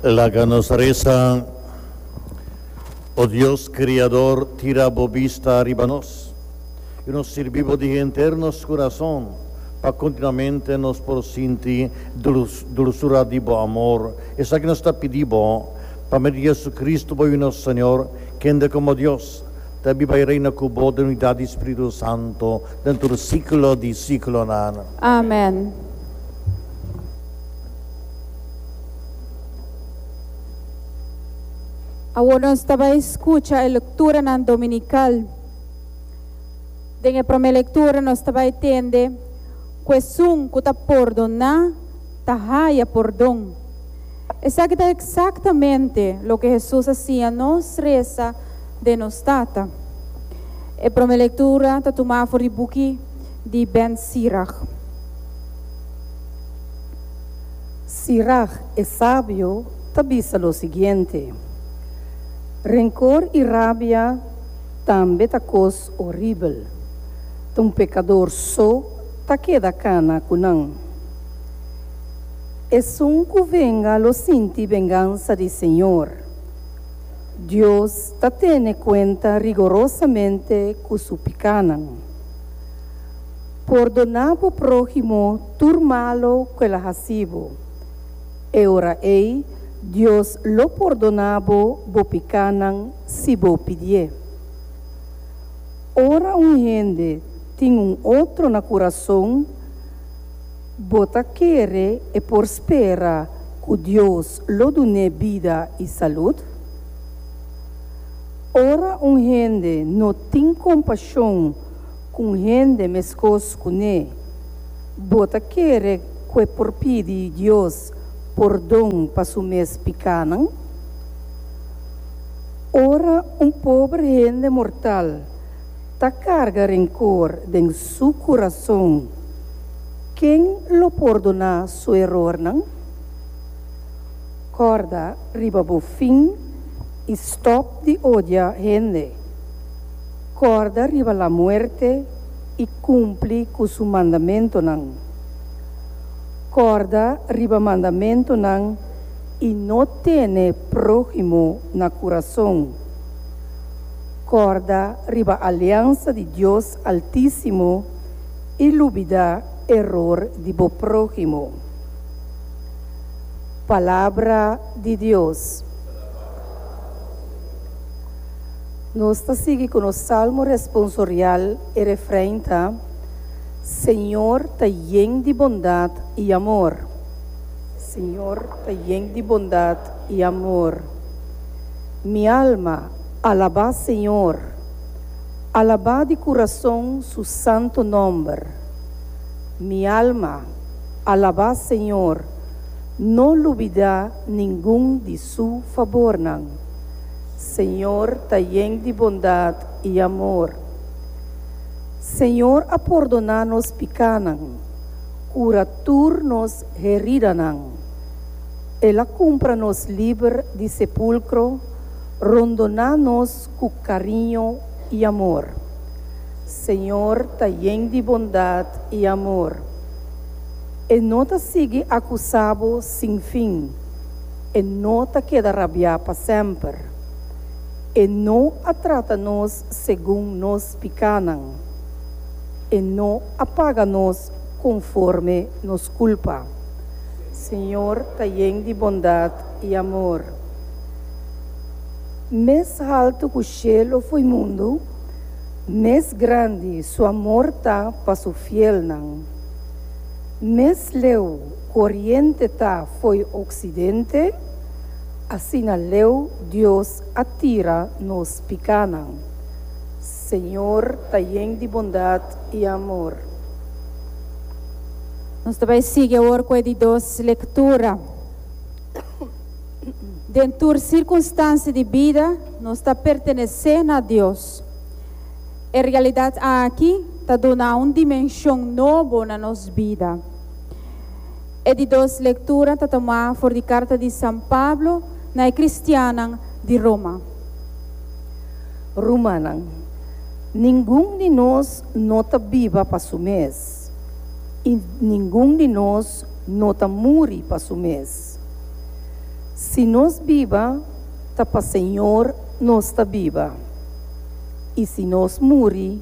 Laga nos resa, O Dios Criador, tira bo bista riba nos, i nos sirbi bo di henter nos kurason, pa kontinuamente nos por sinti dulsura di bo amor. Esaki nos ta pidi bo, pa medio di JesuCristo, bo i nos Señor, kende komo Dios ta biba i reina ku bo den unidat di Spiritu Santo den tur siklo di siklonan. Amen. Awor nos ta bai skucha e lekturanan dominikal. Den e promé lektura nos ta bai tende ku esun ku ta pordoná ta haya pordon. Esaki ta eksaktamente loke Hesus a siña nos resa den nos Tata. E promé lektura ta tuma afo di buki di Ben Sirach. Sirach, e sabio, ta bisa lo siguiente, Rencor i rabia tambe ta cos horibel, ta un pecador so ta keda cana cu nan. Esun cu venga lo sinti vengansa di Señor. Dios ta tene cuenta rigorosamente cu su picanan. Pordona bo próhimo tur malo ku el a hasi bo. E ora ei Dios lo pordona bo bo pikánan si bo pidié. Ora un hende tin un otro na kurason, bo ta kere e por spera ku Dios lo dun'é bida i salud? Ora un hende no tin kompashon Cu un hende mescos cu ne? Bo ta kere cu e por pidi Dios pordon pa su mes picanan? Ora un pober hende mortal ta carga rencor den su curason, ken lo pordona su erornan? Corda riba bo fin i stop di odia hende. Kòrda riba lamuerte i kumpli ku su mandamentunan. Kòrda riba mandamentunan i no tene próhimo na kurason. Kòrda riba aliansa di Dios Altísimo i lubidá eror di bo próhimo. Palabra di Dios. Nos ta sigui ku nos salmo responsorial, e refrein ta, Señor ta yen di bondat i amor. Señor ta yen di bondat i amor. Mi alma, alabá Señor. Alabá di kurason Su santu nòmber. Mi alma, alabá Señor, no lubidá ningun di. Su fabornan. Señor ta yen di bondad i amor. Señor a pordoná nos pikánan, kura tur nos heridanan. El a kumpra nos liber di sepulkro, rondoná nos ku kariño i amor. Señor ta yen di bondad i amor. E no ta sigui akusá bo sin fin. E no ta keda rabiá pa semper. E no a trata nos segun nos pikánan. E no a paga nos konforme nos kulpa. Señor ta yen di bondat i amor. Mes haltu ku shelu foi mundu, mes grandi Su amor ta pa Su fielnan. Mes leu Oriente ta fo'i Occidente, asina leu Dios a tira nos picanan. Señor ta yen di bondad y amor. Nos ta bay sigui awor cu e di dos lectura. Den tur circunstancia di bida nos ta pertenece na Dios. E realidad aki ta duna un dimension nobo na nos bida. E di dos lektura ta tomá for di karta di San Pablo na e kristiannan di Roma. Rumannan, ningun di nos no ta biba pa su mes, i ningun di nos no ta muri pa su mes. Si nos biba, ta pa Señor nos ta biba, i si nos muri,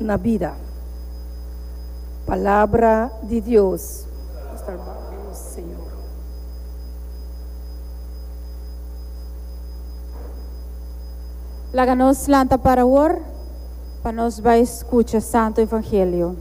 na bida. Palabra di Dios. Laga nos lanta para wor pa nos bai skucha Santo Evangelio.